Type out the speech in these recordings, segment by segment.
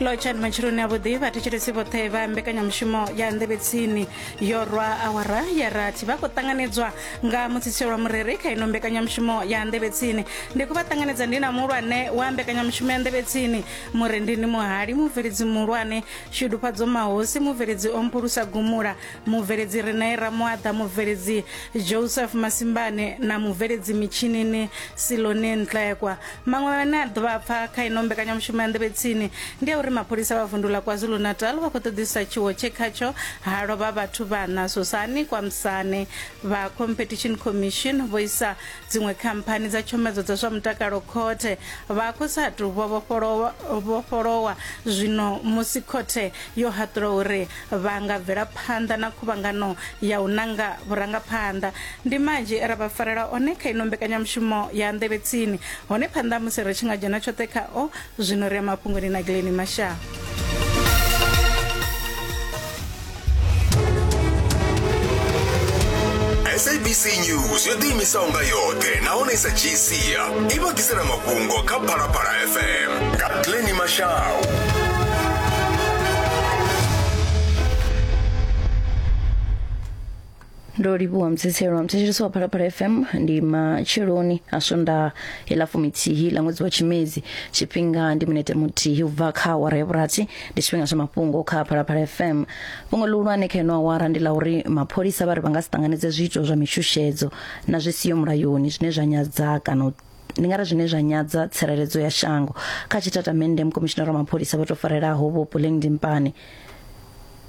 lotshani matshiloni a vhuḓi vhathetshelesi vhoṱhe vha mbekanyamushumo ya nḓevhetsini yo rwa awara ya rathi vha khou ṱanganedzwa nga mutsitsielwa murere kha ino mbekanyamushumo ya nḓevhetsini ndi khou vha ṱanganedza ndi na muhulwane wa mbekanyamushumo ya nḓevhetsini murendini muhali mubveledzi muhulwane shudufhadzo mahosi mubveledzi o mphulusa gumula mubveledzi renee ramuaḓa mubveledzi joseph masimbane na mubveledzi mitshinini silone ntlekwa Maṅwe ane a ḓo vha pfa kha ino mbekanyamushumo ya nḓevhe tsini ndi a uri mapholisa vha vundu ḽa KwaZulu-Natal vha khou ṱoḓisisa tshiwo tshe khatsho ha lovha vhathu vhaṋa Sosani Kwamsane. Vha Competition Commission vho isa dziṅwe khamphani dza tshomedzo dza zwa mutakalo khothe vha khou sa tou vhofholowa zwino musi khothe yo haṱula uri vha nga bvela phanḓa na khuvhangano ya u nanga vhurangaphanḓa ndi manzhi e ra vha farela one kha ino mbekanyamushumo ya nḓevhe tsini hone phanḓa musi ri tshi nga dzhena tshoṱhe khao zwino ri ya mafhungoni na gileni mashaa sabc news yo ḓiimisaho nga yoṱhe nahone i sa dzhii sia i vha ḓisela mafhungo kha phalaphala fm nga glenni mashau ndo livhuwa mtsitselo wa mtsitseliso wa phalaphala fm ndi matsheloni a swondaha ila fuminthihi la ṅwedzi wa tshimedzi tshifhinga ndi minete muthihi u bva kha awara ya vhurathi ndi tshifhinga tsha mafhungo kha phalaphala fm fhungo ḽihulwane kha ino awara ndi la uri mapholisa vha ri vha nga si ṱanganedze zwiito zwa mishushedzo na zwi siho mulayoni zwine zwa nyadza kana u ndi nga ri zwine zwa nyadza tsireledzo ya shango kha tshitatamennde mukomishinara wa mapholisa vho tou farelaho vho puleng dimpane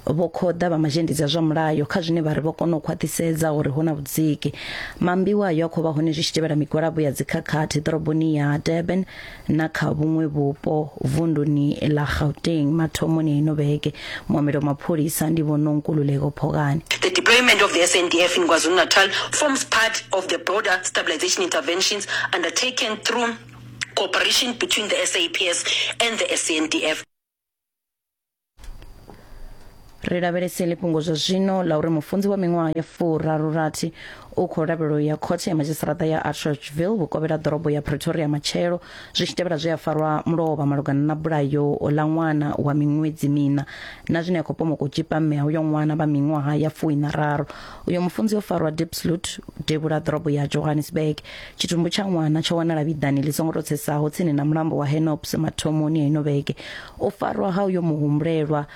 vho khoḓa vha mazhendedzi a zwa mulayo kha zwine vha ri vho kona u khwaṱhisedza uri hu na vhudziki mambiwa ayo a khou vha hone zwi tshi tevhela migwalabo ya dzikhakhathi ḓoroboni ya durban na kha vhuṅwe vhupo vunduni ḽa gauteng mathomoni a ino vhege Mohammed wa mapholisa ndi vho Nonkululeko Phokani. The deployment of the SANDF in KwaZulu-Natal forms part of the broader stabilization interventions undertaken through cooperation between the SAPS and the SANDF. Ri lavhelese ḽifhungo zwa zwino ḽa uri mufunzi wa miṅwaha ya furaru rathi u khou lavhelelwa u ya khothe ya madzhisiṱaraṱa ya Atteridgeville vhukovhela ḓorobo ya Pretoria matshelo zwi tshi tevhela zwe a farwa mulovha malugana na bulayo ḽa ṅwana wa miṅwedzi mina na zwine a khou pomoka u tshipa mme uyo ṅwana vha miṅwaha ya fuwi na raru uyo mufunzi o farwa dipslut devhula ḓorobo ya johannesburg tshitumbu tsha ṅwana tsho wanala vhiḓani ḽi songo to tsesaho tsini na mulambo wa henops mathomoni a ino vhege u farwa ha uyo muhumbulelwa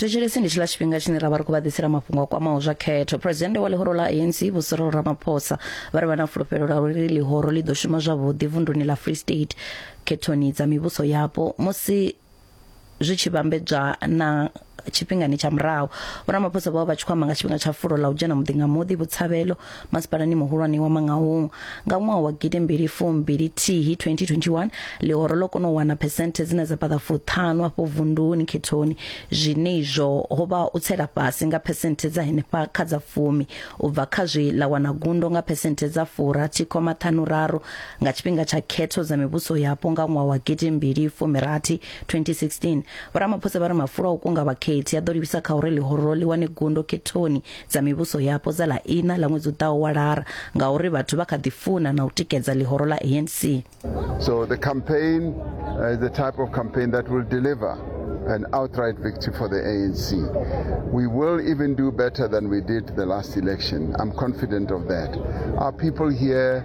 thetshelesi ndi tshila tshifhinga tshine ra vha ri khou vha ḓisela mafhungo a kwamaho zwa khetho phuresidennde wa ḽihoro ḽa anc vho cyril ramaphosa vha ri vha na fulufhelo la uri ḽihoro ḽi ḓo shuma zwavhuḓi vunduni ḽa free state khethoni dza mivhuso yapo musi zwi tshi vhambedzwa na tshifhingani tsha murahu vhoramaphosa vho vha vha tshi khou amba nga tshifhinga tsha fulo ḽa u dzhena muḓi nga muḓi vhutshavhelo masipalani muhulwane wa mangaung nga ṅwaha wa gidi mbili fumbili thihi 2021 ḽihoro ḽo kona u wana phesenthe dzine dza paḓa fuṱhanu afho vunduni khethoni zwine izwo ho vha u tsela fhasi nga phesenthe dza henefha kha dza fumi u bva kha zwi ḽa wana gundo nga phesenthe dza furathi khoma ṱhanu raru nga tshifhinga tsha khetho dza mivhuso yapo nga ṅwaha wa gidimbili fumirathi 2016 vhoramaphosa vha ri mafulo a u kunga vhakhethi a ḓo livhisa kha uri ḽihoro ḽi wane gundo khethoni dza mivhuso yapo dza ḽa ina ḽa ṅwedzi u ḓaho wa lara ngauri vhathu vha kha ḓi funa na u tikedza ḽihoro ḽa anc so the campaign uh, is the type of campaign that will deliver an outright victory for the ANC. We will even do better than we did the last election. I'm confident of that. Our people here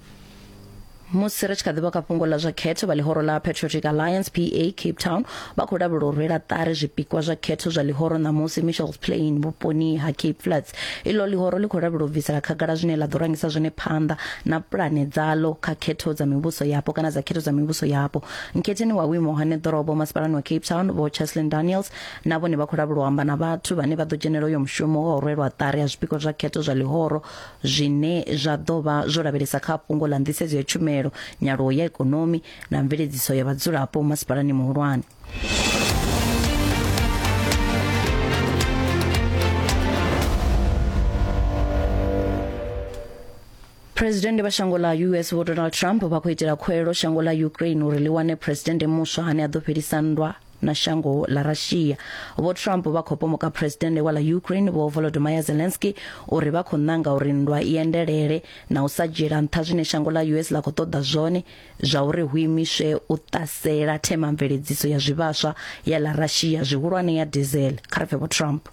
musi ri tshi kha ḓivha kha fhungo ḽa zwa khetho vha ḽihoro ḽa patriotic alliance pa cape town vha khou lavhelela u rwela ṱari zwipikwa zwa khetho zwa ḽihoro ṋamusi michels plain vhuponi ha cape flats iḽo ḽihoro ḽi khou lavhelela u bvisela khagala zwine ḽa ḓo rangisa zwone phanḓa na pulane dzaḽo kha khetho dza mivhuso yapo kana dza khetho dza mivhuso yapo nkhetheni wa vhuimo hane ḓorobo masipalani wa cape town vho cheslin daniels na vhone vha khou lavhelela u amba na vhathu vhane vha ḓo dzhenela uyo mushumo wa u rwelwa ṱari ha zwipikwa zwa khetho zwa ḽihoro zwine zwa ḓo vha zwo lavhelesa kha fhungo ḽa nḓisedzo ya tshumelo nyaluwo ya ikonomi na mveledziso ya vhadzulapo masipalani muhulwane Presidennde vha shango ḽa US Vho Donald Trump vha khou itela khuwelelo shango ḽa Ukraine uri ḽi wane presidennde muswa ane a ḓo fhelisa nndwa na shango ḽa russia vho trump vha khou pomoka phuresidennde wa ḽa ukraine vho volodymyr zelensky uri vha khou ṋanga uri nndwa i endelele na u sa dzhiela nṱha zwine shango ḽa us ḽa khou ṱoḓa zwone zwa uri hu imiswe u ṱasela themamveledziso ya zwivhaswa ya ḽa russia zwihulwane ya diesel kha ri pfe vho trump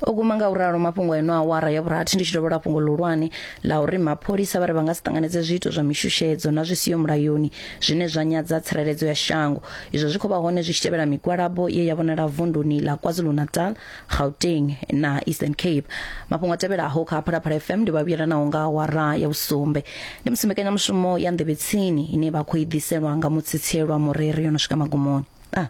o guma nga u ralo mafhungo eno awara ya vhurathi ndi tshi dovhola fhungo ḽihulwane ḽa uri mapholisa vha ri vha nga si ṱanganedze zwiito zwa mishushedzo na zwi siho mulayoni zwine zwa nyadza tsireledzo ya shango izwo zwi khou vha hone zwi tshi tevhela migwalabo ye ya vhonala vunduni ḽa kwazulu-natal gauteng na eastern cape mafhungo a tevhelaho kha phalaphala fm ndi vhavhuyelanaho nga awara ya vhusumbe ndi musi mbekanyamushumo ya nḓevhetsini ine vha khou i ḓiselwa nga mutsitsielwa mureri yo no swika magumoni ah.